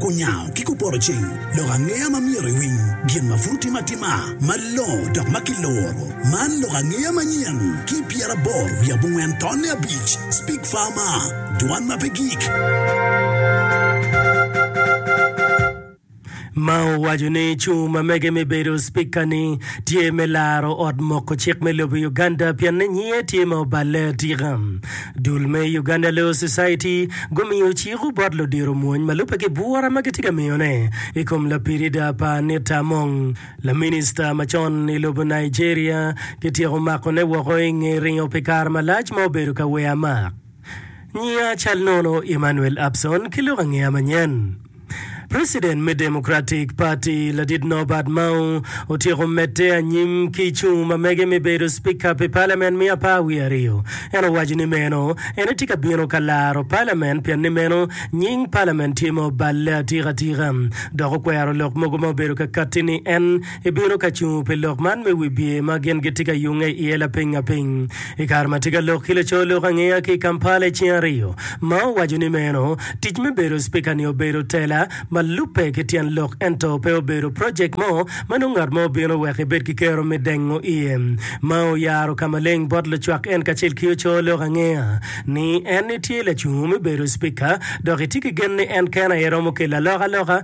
Kunyango ki kuporoceng lok angeya ma myero iwiny gin ma pud otime atima malongo dok ma kiluro. Man lok angeya manyen ki pyeraboro wiye abongwen tonne abic, Speak Farmer, Dwan ma pe gik. ma owaco ni cung ma mege me bedo Spika-ni tye me laro ot moko cik me lobo Uganda pienni nyinge tye ma oballe atika. Dul me Uganda Law Society gumiyo ciko bot ludiro mwony ma lubbe ki bwura ma gitye ka miyone i kom lapirida pa Anita Among, laminista macon i lobo Nigeria, kityeko makone woko i nge ringo pi kare malac ma obedo ka weya mak. Nyiya cal nono Emmanuel Abson ki lok angeya manyen. President me Democratic Party ladit Norbert Mao otyeko medde anyim ki i cung ma mege me bedo Spika pi palament me apar wiye aryo. En owaco ni meno en etye ka bino ka laro palament pien ni meno nying palament tye ma oballe atika tika dok okwero lok mogo ma obedo ka katti ni en Ibino ka cungo pi lok man me wibye ma gin gitye ka yunge iye lapiny apiny i kare ma tika lok ki laco lok angeya ki i Kampala i cing ariyo ma owaco ni meno tic me bedo Spika ni obedo tela ma lubbe ki tyen lok ento pe obedo project mo ma nongo ngat mo bino wek ibed ki kero me dengo iye. Mao oyaro ka maleng bot lucwak en kacel ki oco lok angeya ni en itye lacungo me bedo Spika dok itye ki gen ni en kene aye romo kelo alokaloka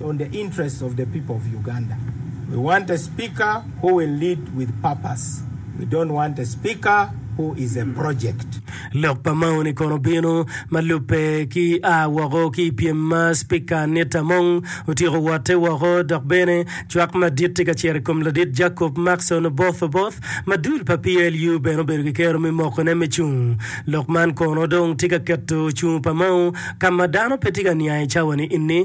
on the interest of the people of Uganda we want a speaker who will lead with purpose we don't want a speaker who is a project. Lok pa Mao ni kono bino ma lubbe ki a woko ki i pyem ma Spika Annette Among otyeko wotte woko dok bene cwak madit tye ka cito i kom ladit Jacob Maxon Oboth Oboth ma dul pa PLU bene obedo ki kero me mokone me cung. Lok man kono dong tye ka keto cung pa Mao ka ma dano pe tye ka niang i cawa ni enni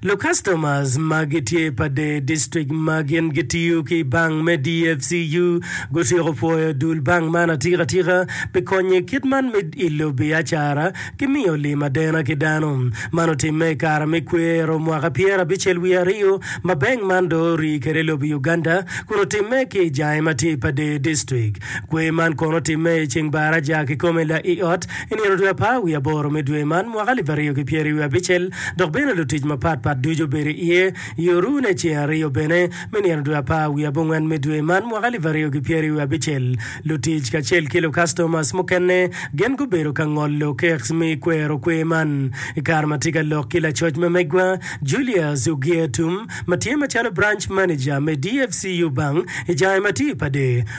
Lukastomas ma gitye pa dee distrik ma gin gitiyo ki bank me dfcu gutyeko pwoyo dul bank man atika tika pi konyo i kit man me ilo biacara ki miyo lim adena ki dano. Man otimme i kare me kwero mwaka pyera abicel wiye aryo ma bank man dong orii kwede i lobo Uganda kun otimme ki i jange ma tye pa dee distrik. Kwer man kono otimme i ceng baraja kikome la i ot I nino dwe apar wiye aboro me dwe man, mwaka alip aryo ki pyeri wiye abicel, dok bene lutic mapat pat ducu obedo iye, i orune ceng aryo bene me nino dwe apar wiye abongwen me dwe man, mwaka alip aryo ki pyeri wiye abicel, lutic kacel ki lukastomas mukene gin gubedo ka ngolo kek me kwero kwer man. I kare ma tye ka lok ki lacoc ma megwa, Julius Ogietum, ma tye macalo Branch Manager me DFCU Bank i Jai Matipa de,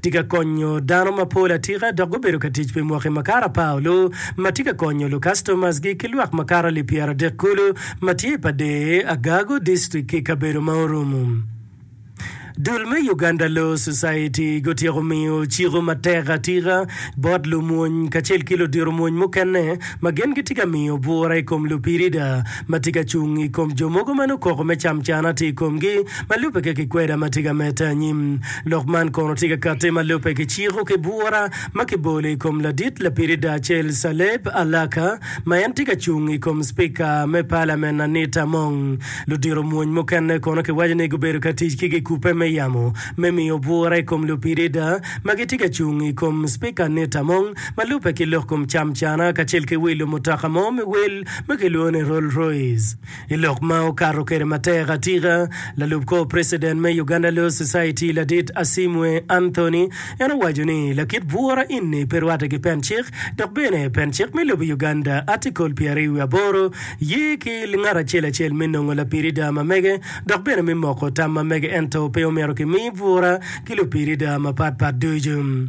tye ka konyo dano mapol atika dok gubedo ka tic pi mwaki makato apar olu ma tye ka konyo lukastomasgi ki lwak makato alip pyeradek kulu ma tye i pader Agago District ki i kabedo ma orumo. Dul me Uganda Law Society gutyeko miyo ciko matek atika bot lumwony kacel ki ludito mwony mukene ma gin gitye ka miyo bwura i kom lupirida ma tye ka cung i kom jo mogo ma nongo koko me camcana tye i komgi ma lubbe ki kikweda ma tye ka medde anyim. Lok man kono tye ka katti ma lubbe ki ciko ki bwura ma kibolo i kom ladit lapiri Darcel Saleb Alaka ma en tye ka cung i kom Cipika me Palamen Anita Among. Ludito mwony mukene kono kiwaco ni gubedo ka tic ki gikubbe me yamo me miyo bwura i kom lupirida ma gitye ka cung i kom Cipika Anita Among ma lubbe ki lok kom camcana kacel ki wilo mutoka mo me wel ma kilwongo ni Rolls Royce i lok ma okato kwede matek atika. Lalub kor precedent me Uganda Law Society ladit Asimwe Anthony en owaco ni lakit bwura eni pe rwate ki pen cik dok bene pen cik me lobo Uganda Article pyer ariyo wiye aboro ye ki ngat acel acel me nongo lapirida ma mege dok bene me moko tam ma mege ento pe omyero kimi bwura ki lupirida mapat pat ducu.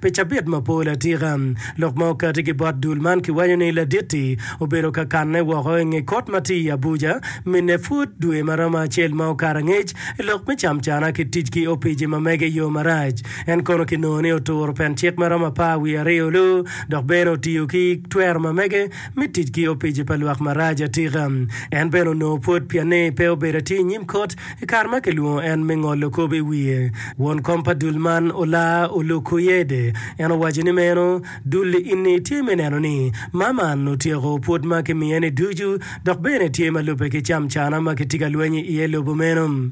Pi cabit mapol atika, lok ma okati ki bot dul man kiwaco ni Ladit-ti obedo ka kanne woko i nge kot ma tye i Abuja minne pud dwe ma romo acel ma okato angec i lok me camcana ki tic ki opici ma mege i yo marac. En kono kinongo ni oturo pen cik ma romo apar wiye aryo lu dok bene otiyo ki twero ma mege me tic ki opici pa lwak marac atika. En bene onongo pwod pienni pe obedo atir i nyim kot I kare ma kilwongo en me ngolo kop i wiye, won kom pa dul man olar oluku Yede. En owaco ni meno, Dul ini tye me neno ni ma man otyeko pwod ma kimiye-ni ducu dok bene tye ma lubbe ki camcana ma kitye ka lweny iye lobo meno.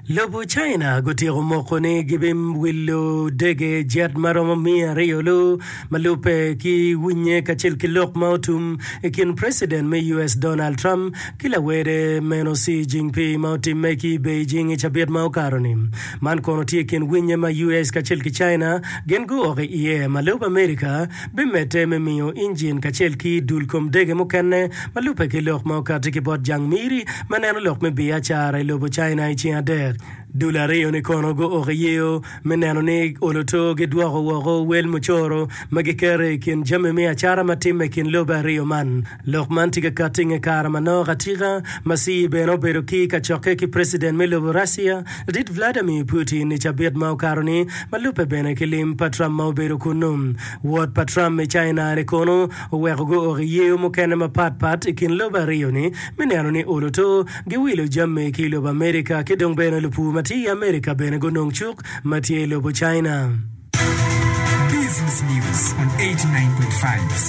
Lobo China gutyeko moko ni gibimwilo dege jet ma romo miya aryo-lu ma lubbe ki winye kacel ki lok ma otum i kin Preciden me US Donald Trump ki lawede meno Xi Jingpi ma otimme ki i Beijing i cabit ma okato-ni. Man kono tye i kin winye ma US kacel ki China gin guok i iye ma lub America bimedde me miyo injin kacel ki dul kom dege mukene ma lubbe ki lok ma okatti ki bot jang miri me neno lok me biacara i lobo China i ceng adek. Dul aryo-ni kono guoko i yeyo me neno ni oloto gidwoko woko wel mucoro ma giketo i kin jami me acata ma timme i kin lobe aryo man. Lok man tye ka katti inge kare ma nok atika ma Xi bene obedo ki kacokke ki president me lobo Russia dit Vladimir Putin i cabit ma okato-ni ma lubbe bene ki lim pa Trump ma obedo kunnu. Wot pa Trump i China-ni kono oweko guok i yeyo mukene mapat pat i kin lobo aryo-ni me neno ni olo to giwilo jami ki i lobo America ki dong bene lupur ma tye i America bene gunong cuk ma tye i lobo China. Business News on 89.5.